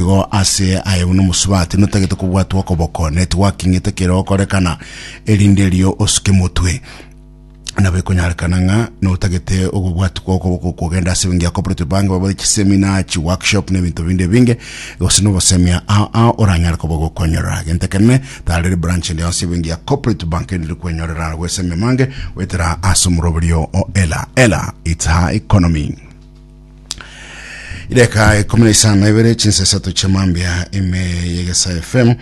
Igo ase aya buna omosubati notagete kobwatwa okoboko, ne tigwaking'ete kere okorekana, erinde erio osuke motwe. Nabo ekonyarekana ng'a notagete okobwatwa kwa okoboko kogenda ase engencho ya cooperative bank, babore chisemina, chiworkshop na ebinto binde ebinge, gose nobosemia ao ao oranyare koba ogokonyorera. Gento ekenene, tarera ebranch ende yonsi y'ebenki ya cooperative bank erinde kwenyorera goesemia mange goetera ase omoroberio o ela. Ela, it's her economy. Reka ikumi na isano na ibere chinsa isato chia mambia ime yegesa FM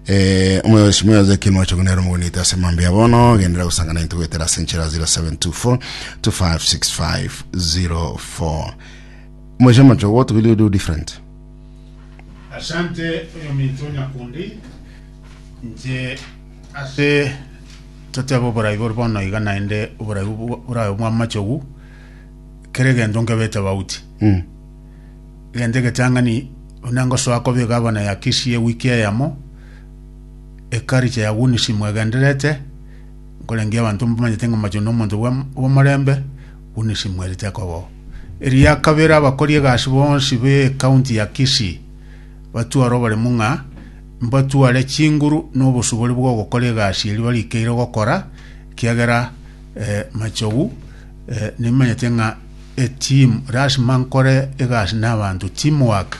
eh, omoyosi moyoze kinwa chogunera omogonita ase mambia bono gendera gusangana into gwetera ase enchera 0724 256504 moisha macho what will you do different Asante oyominto nyakundi nche ase totebe oborai bore bono iga naende oborai bwo- bwo- borabe bwa amachogu kera egento nkebete bauti. Mm. Egento egetang'ani buna ngosoa koba egavana ya Kisii ewiki eyemo, ekaricha ya Wunisi mwegenderete, nkorengia abanto mbamanyete ng'a Macho nomonto bwa- bw'omorembe, Wunisi mwerete kobao. Eria kabere abakori egasi bonsi b'ekaunti ya Kisii batware oboremu ng'a mbatware chinguru n'obosubori bw'ogokora egasi eri barikeire gokora, kiagera eh, Machogu Eh, nimanyete ng'a etimu lasima nkore egasi n'abanto teamwork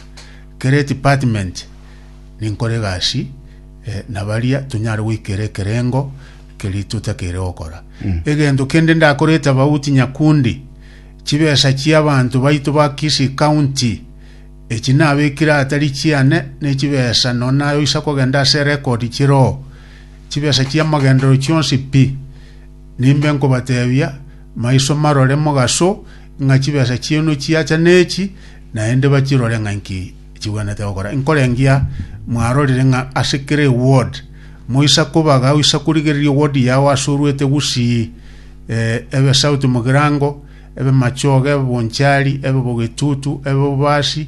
kere department ninkore egasi eh, na baria tonyare goikera ekerengo keri totakeire gokora egento kende ndakorete abauti nyakundi chibesa chi'abanto baito ba Kisii County echi nabekire atari chiane nechibesa no nayoisa kogenda ase record chiroo chibesa chi'amagendero chionsi pi Nimbe nkobateebia, maiso marore mogaso ng'a chibesa chiaino chiacha nechi, naende bachirore ng'a inki chibwenerete gokora. Inkorengia mwarorire ng'a ase kera eward moisa kobaga oisa korigereria eward yao ase oruete gusii eh, ebe South Mugirango, ebe Machoge, ebe Bonchari, ebe Bogetutu, ebe Obasi,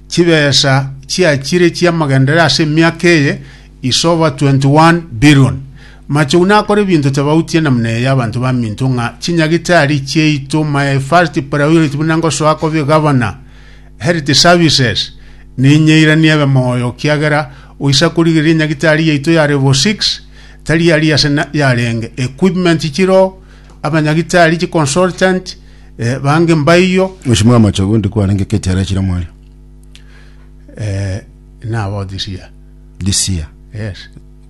Chibesa chiachire chi'amagenderero ase emiaka eye is over 21 billion. Machogu nakore ebinto tabautie namna eye abanto baminto ng'a chinyagitari chiaito my first priority buna ngosoa kobia gavana health services ninyeiranie ebe moyo kiagera oisa korigereria enyagitari yaito ya level 6 tari yari ase na- yarenge equipment chiro abanyagitari chi consultant Eh, bange mbaiyo Oshimo ya machogo ndi kwarenge keti ara chira mwario. eh, nabo this year. This year. Yes.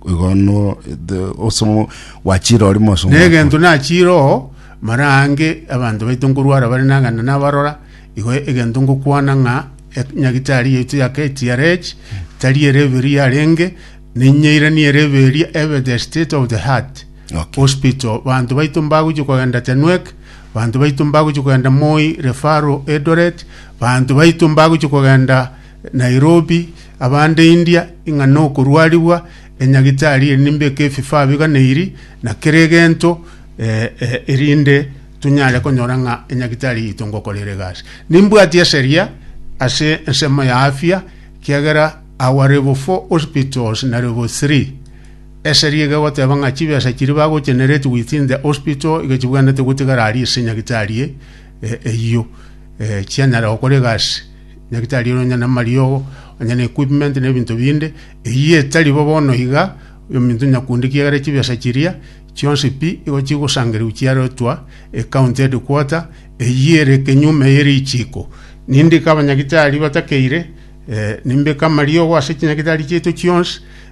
Igono the osomo wachira ori mosomo. negento nachiro mara ange abanto baito nkorwara bare nagana nabarora igo egento ngokwana ng'a e- nyagitari yaitu ya KTRH tari ere eberi yarenge ninyeirani ere eberi ebe the state of the heart Okay. hospital banto baito mbagochi kogenda tenwek Banto baito mbagochia kogenda Moi, Refaro, Eldoret, banto baito mbagochia kogenda Nairobi, abande India, ing'a nokorwarigwa, enyagitari eri nimbeke ebifaa biganeiri na kera egento eh, eh, erinde tonyare konyora ng'a enyagitari yaito ngokorera egasi. Nimbwati eseria ase ensemo ya afya, kiagera our level 4 hospitals na level 3 Eseri iga egoteba ng'a chibesa chiria bagocheneretie within the hospital iga chibwenerete gotigara aria ase nyagitari e- e- eyio eh, chianyare gokora egasi nyagitari ere onye namariogo onye na equipment na ebinto binde eyio etari bo bono iga ominto nyakundi kiagera chibesa chiria chionsi pi igo chigosangereru chiaretwa ecounty headquarter eyio ere ekenyume ye richiko nindike abanyagitari batakeire eh, nimbeke amariogo ase chinyagitari chiaito chionsi